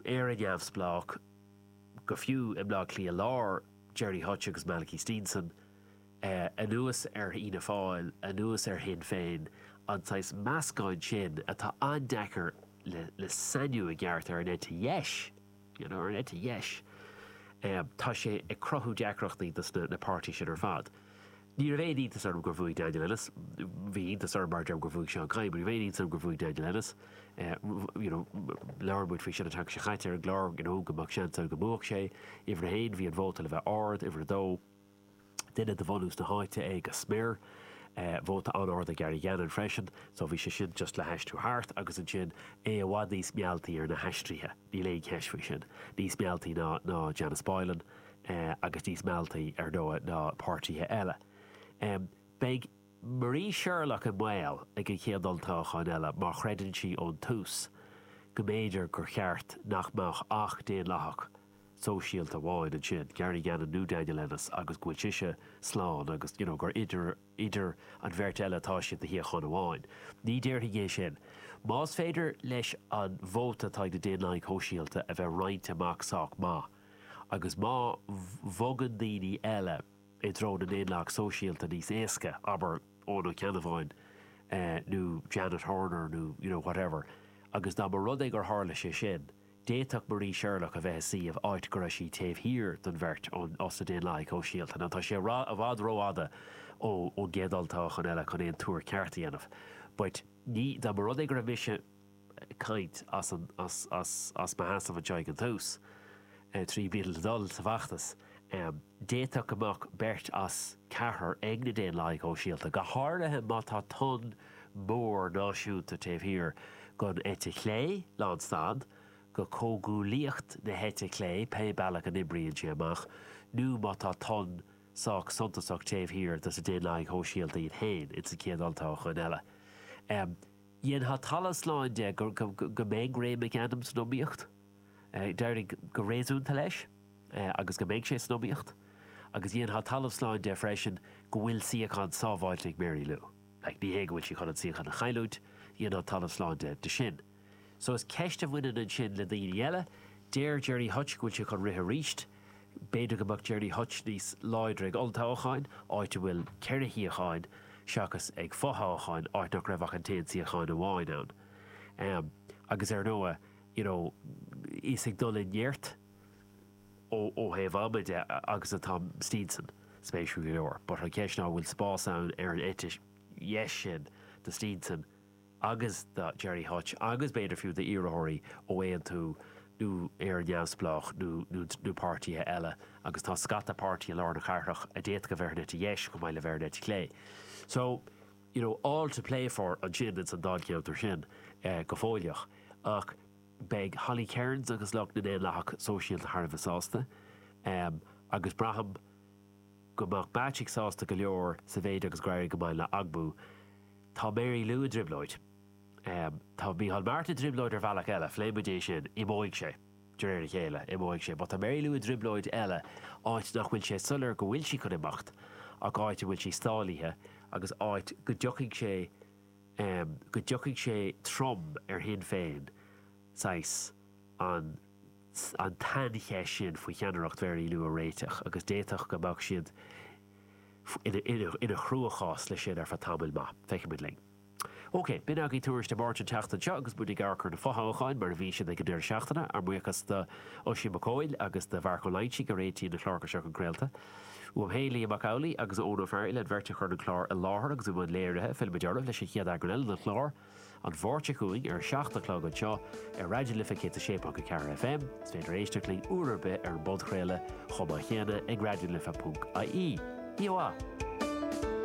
Éire neamhspleách, go fiú i mBleá Cliath Lár, Gerry Hutch agus Malachy Steenson, anuas ar Fhianna Fáil, anuas ar Shinn Féin, an saghas meascáin sin atá an-deacair le sainiú i gceart ar an eite dheis, you know, ar an eite dheis, tá sé ag cruthú deacrachtaí dos na páirtí sin ar fad. Ní raibh aon iontas orm gur bhuaigh Daniel Ennis. Bhí iontas orm gur bhuaigh Seán Kyne, but ní raibh aon iontas orm gur bhuaigh Daniel Ennis. You know, labhair muid faoi sin an tseachtain seo chaite ar an gclár, you know, go mbeadh seans air go mbuafadh sé. Uimhir a haon, bhí an vóta le bheith ard. Uimhir a dó, duine de bhunús na háite é go smior. Vóta an-ard ag Gary Gannon freisin. So bhí sé sin just le haistriú thart agus ansin é i bhfad níos mealltaí ar na haistrithe. Níl aon cheist faoi sin. Níos mealltaí ná Janice Boylan. agus níos mealltaí, ar ndóigh, ná páirtithe eile. Beidh Marie Sherlock i mbaol ag an chéad olltoghchán eile mar creideann sí ón tús go mb'fhéidir gur cheart nach mbeadh ach Daonlathach Sóisialta amháin ansin, Gary Gannon nó Daniel Ennis, agus go bhfuil sise slán agus you know gur idir an bheirt eile atá sé do shuíochán amháin. Ní déarfainn é sin. Más féidir leis an vóta atá ag na Daonlathaigh Shóisialta a bheith roinnte amach sách maith, Agus má bhogann daoine eile i dtreo na ndaonlathach sóisialta níos éasca, abair Eoin Ó Ceannabháin nó Janet Horner nó you know whatever, agus dá mba rud é gur tharla sé sin, d'fhéadfadh Marie Sherlock a bheith i suíomh áit go raibh sí taobh thiar den bheirt ós na daonlathaigh shóisialta. Now tá sé i bhfad rófhada ón gcéad olltoghachán eile chun aon tuar ceart a dhéanamh, but ní, dá mba rud é go raibh mise, caint as mo sheasamh anseo ag an tús, roimh dul sa bhfeachtas. D'fhéadfadh go mbeadh beirt as ceathrar ag na Daonlathaigh Shóisialta, go háirithe má tá tonn mór náisiúnta taobh thiar den eite chlé, lán stad, de chomhghuaillíocht na heite clé, pé bealach a n-oibríonn sé amach, nó má tá tonn sách suntasach taobh thiar des na Daonlathaigh Shóisialta iad féin, ins an chéad olltoghchán eile. Dhéanfainn talamh slán de go mbeidh Ray McAdam san iomaíocht. D'éirigh go réasúnta leis agus go mbeidh sé san iomaíocht agus dhéanfainn talamh slán de freisin go bhfuil suíochán sábháilte ag Mary Lou. Like ní hé go bhfuil sí chun an suíochán a chailliúint, dhéanfainn talamh slán de sin. Só is ceist a bhaineann ansin le daoine eile. Deir Gerry Hutch go bhfuil sé chun rith arís. B'fhéidir go mbeadh Gerry Hutch níos láidre ag olltoghchán, áit a bhfuil ceithre shuíochán, seachas ag fothoghchán, áit nach raibh ach an t-aon suíochán amháin ann. Agus ar ndóigh, you know, is ag dul i neart ó thaobh ama de agus atá Steenson, spéisiúil go leor. But an cheist ná an bhfuil spás ann ar an eite dheis sin do Steenson? agus do Gerry Hutch agus b'fhéidir fiú d'iarrthóirí ó Aontú nó iarrthóirí neamhspleácha nó páirtithe eile agus tá scata páirtithe i lár na cathrach a d'fhéadfadh bheith ina eite dheis chomh maith le bheith ina eite chlé. So, you know, all to play for ansin ins an Dáilcheantar sin go fóilleach ach beidh Holly Cairns agus lucht na nDaonlathach Sóisialta thar a bheith sásta agus braithim go mbeadh Beatty sásta go leor sa mhéid agus go raibh go maith le Agbú. Tá Mary Lou i dtrioblóid. Tá Micheál Martin i dtrioblóid ar bhealach eile. Phléigh muid é sin. Imeoidh sé, de réir a chéile. Imeoidh sé. But tá Mary Lou i dtrioblóid eile, áit nach bhfuil sé soiléir go bhfuil sí chun imeacht, ach áit a bhfuil sí stálaithe agus áit go dtiocfaidh sé, go dtiocfaidh sé trom ar Shinn Féin, saghas, an, an tsaincheist sin faoi cheannaireacht Mhary Lou a réiteach agus d'fhéadfadh go mbeadh siad, i gcruachás leis sin ar feadh tamaill maith. Feicfidh muid linn. OK, b'in agaibh Fios Feasa na Máirt an tseachtain seo agus muid ag amharc ar na fothoghcháin mar a bhí siad ag an deireadh seachtaine. Ár mbuíochas d'Oisín Mac Cumhaill agus do Mharc Ó Loingsigh a réitíonn na cláracha seo chun craolta. Uaim féin, Liam Mac Amhlaigh agus Eoin Ó Fearghaile an bheirt a chuireann an clár i láthair agus ón mbuíon léirithe, fillfimid oraibh leis an chéad eagrán eile den chlár. An Mháirt seo chugainn ar a seacht a chlog anseo ar Raidió na Life 106.4 FM. Is féidir éisteacht linn uair ar bith ar an bpodchraoladh chomh maith chéanna ag raidionalife.ie. Íomhá!